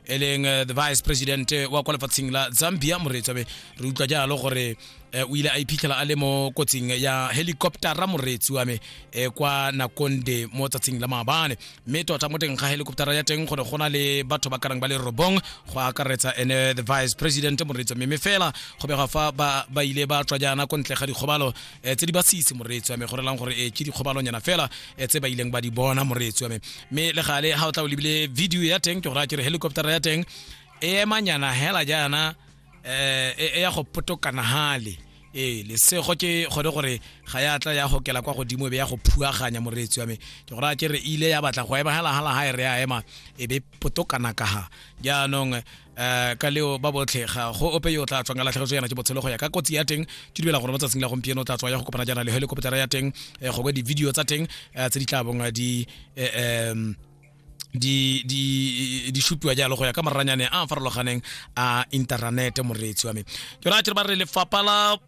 e leng eh, the vice president eh, wa kwa lefatsheng la zambia moreetso be re utlwa jalo gore eh, o ile a iphitlhela a le mo kotsing ya helicoptera moreetsi wa me kwa nakonde mo tsatsing la maabane mme tota mo teng ga helicoptera ya teng gore go na le batho ba karang ba le robong go akaretsa ene the vice president moreetsi mme fela go bega fa ba ile ba tswa jaana ko ntle ga dikgobalo eh, tse di ba sise moreetsi wa me go relang gore eh, ke dikgobalonyana fela eh, tse ba ileng ba di bona moreetsi wa me mme le gale ga o tla o lebile video ya teng ke go raya ke re helicoptera ya teng e emanyana hela jaana eh, e e ya go potokana hale ee lesego ke gone gore ga ya tla ya gokela kwa godimo e be ya go phuaganya moreetsi wa me ke go raya ke re e ile ya batla go ema hela hala ga e re ya ema e be potokana kaga jaanong um ka leo ba botlhe ga go ope yo o tla tswang ka latlhegetso yana ke botshelo go ya ka kotsi ya teng ke dumela gore mo tsatsing la gompieno o tla tswa ya go kopana jaana le helikoptera ya teng um gongwe di-video tsa teng um tse di tla bong di um di di di supiwa jalo go ya ka maranyane a farologaneng a internete moreetsi wa me ke ra ba re lefapha la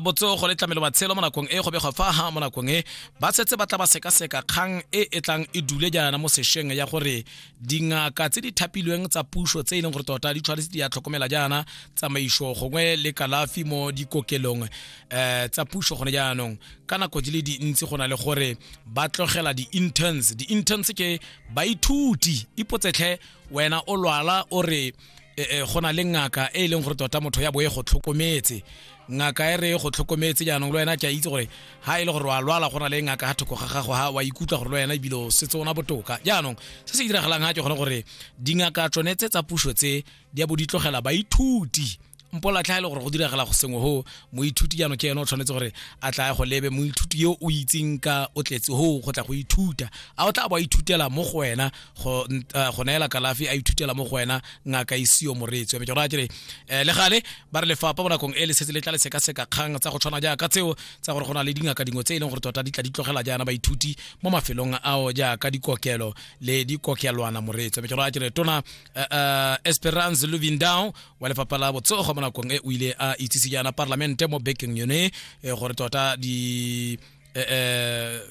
botsogo le tlamelo matshelo mo nakong e go begwa fa ha mo nakong e ba setse ba tla ba sekaseka kgang e e tlang e dule jaana mo sešweng ya gore dingaka tse di thapilweng tsa puso tse e leng gore tota di tshwanetse di ya tlhokomela jaana tsamaiso gongwe le kalafi mo dikokelong um tsa puso gone jaanong ka nako di le dintsi go na le gore ba tlogela di-interns di-interns ke baithuti ipotsetlhe wena o lwala o re e, e, go na le ngaka e e leng gore tota motho ya bo e go tlhokometse ngaka e re e go tlhokometse jaanong le wena ke a itse gore ha e le gore wa lwala go na le ngaka ha thoko ga gago ha wa ikutlwa gore le wena ebile o setse ona botoka jaanong se se diragalang ha ke gone gore dingaka tsone tse tsa puso tse di a bo di tlogela baithuti mpolatlha e le gore go diragala go sengwe ho moithuti jaanong ke ene o tshwanetse gore a tla go lebe moithuti yo o itseng ka o tletse ho go tla go ithuta a o tla bo a ithutela mo go wena go eh, neela kalafi a ithutela mo go wena ngaka isio moreetsi mme ke raya kere eh, le gale ba re lefapa mo nakong e le setse le tla le sekaseka kgang tsa go tshwana jaaka tseo tsa gore go na le dingaka dingwe tse e leng gore tota di tla di tlogela jaana baithuti mo mafelong ao jaaka dikokelo le dikokelwana moreetsi mme ke raya kere tona uh, uh, esperance lubindao wa lefapha la botsogo mo nakong e o ile a itsise jaana parlamente mo bekeng yone eh, gore tota di eh, eh,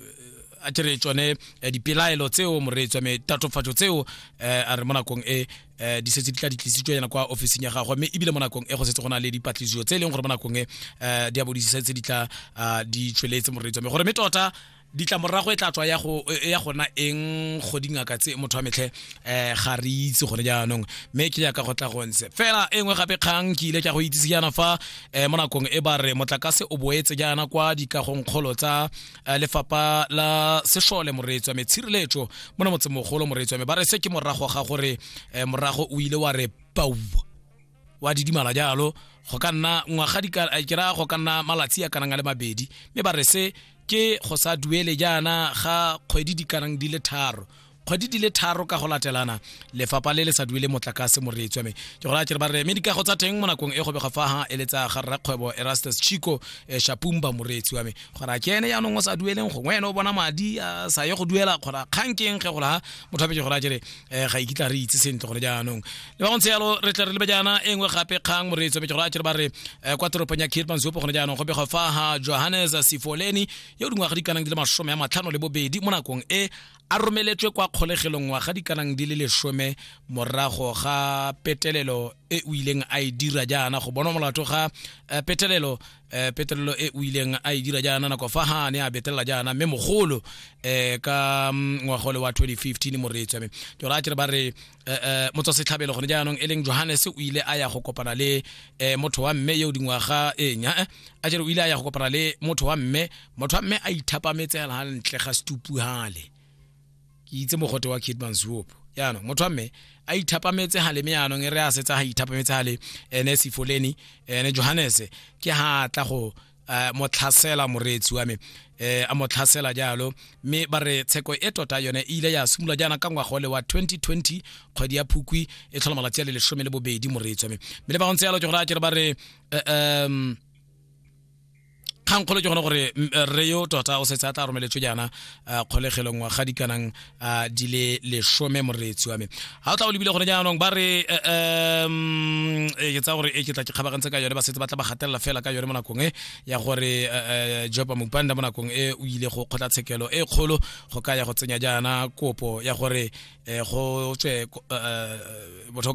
a kere tsone eh, dipelaelo tseo moreetswa me tatofatso tseo eh, a re mo nakong e eh, di setse di tla di tlisitswe yana kwa ofising ya gagwe mme ebile mo nakong e go setse go na le dipatlisiso tse e leng gore mo nakong e eh, di a bodisisa tse di tla ah, di tsweletse moreetswa me gore me tota ditlamorago e tla tswa ya go e ya gona eng go dingaka tse motho wa metlhe um ga re itse gone jaanong mme ke yaka go tla go ntse fela e nngwe gape kgang ke ile ke ya go itsise jaana fa um mo nakong e ba re motlakase o boetse jaana kwa dikagongkgolo tsa eh, lefapha la sešole moreetso ya metshireletso mo na motsemogolo moreetso ya me ba re se ke morago ga gore um morago o ile wa re pau wa didimala jalo go ka nna ngwaga eh, ke raya go ka nna malatsi a kanang a le mabedi mme ba re se ke go sa duele jaana ga kgwedi di kanang di le tharo kgwedi di le tharo ka go latelana lefapha le le sa duele motlakase moreetswa me ke go raya kere ba re mme dikago tsa teng mo nakong e go bega fa ha e letsa ga rrakgwebo erastus chico eh, shapumba moreetsi wa me go ra ke ene jaanong o sa dueleng gongwe ene o bona madi a sa ye go duela kgora kgang keng ge go la motho a beke go raya kere eh, ga ikitla re itse sentle gore jaanong le ba go ntse yalo re tla re lebe jaana e nngwe gape kgang moreetsi wa metsego a tšere ba re eh, kwa toropong ya kirpansupo gone jaanong go bega fa ha johannes sifoleni yo o dingwaga di kanang di le masome a matlhano le bobedi mo nakong e a romeletswe kwa kgolegelong ngwaga di kanang di le lesome morago ga petelelo e o ileng a e dira jaana go bonwa molato ga eh, petelelo eh, petelelo e o ileng a e dira jaana nako fa ha ne a betelela jaana mme mogolo eh, ka mm, ngwaga ole wa 2015 moreetsi wa me jora a tšere ba re eh, eh, motswasetlhabelo gone jaanong e leng johannes o ile a ya go kopana le eh, motho wa mme yo dingwaga eng a a jere o ile a ya go kopana le motho wa mme motho wa mme a ithapametse ga ntle ga stupugale ke itse mogote wa kidman zuopo jaanong motho wa mme a ithapametse gale me jaanong e re a setsa ga ithapametse gale ene sefoleni ene johannes ke ga tla go uh, motlhasela moreetsi wa me eh a motlhasela jalo mme ba re tsheko e tota yone e ile ya simolola jaana ka ngwaga ole wa 2020 kgwedi ya phukwi e tlhola malatsi a le lesome le bobedi moreetsi wa me mme le ba gontse yalo ke gore a kere ba re um kgangkgolo ke gone gore re yo tota o setse a tla romeletswe jaana kgolegelong wa ga dikanang a di le lesome moreetsi wa me ga o tla o lebile gone jaanong ba re eh, um ke tsa gore e ke tla ke kgabagantse ka yone ba setse ba tla ba gatelela fela ka yone mo nakong e ya gore eh, jopa mopanda mo nakong e o ile go kgotlatshekelo e kgolo go ka ya go tsenya jaana kopo ya gore go tswe botho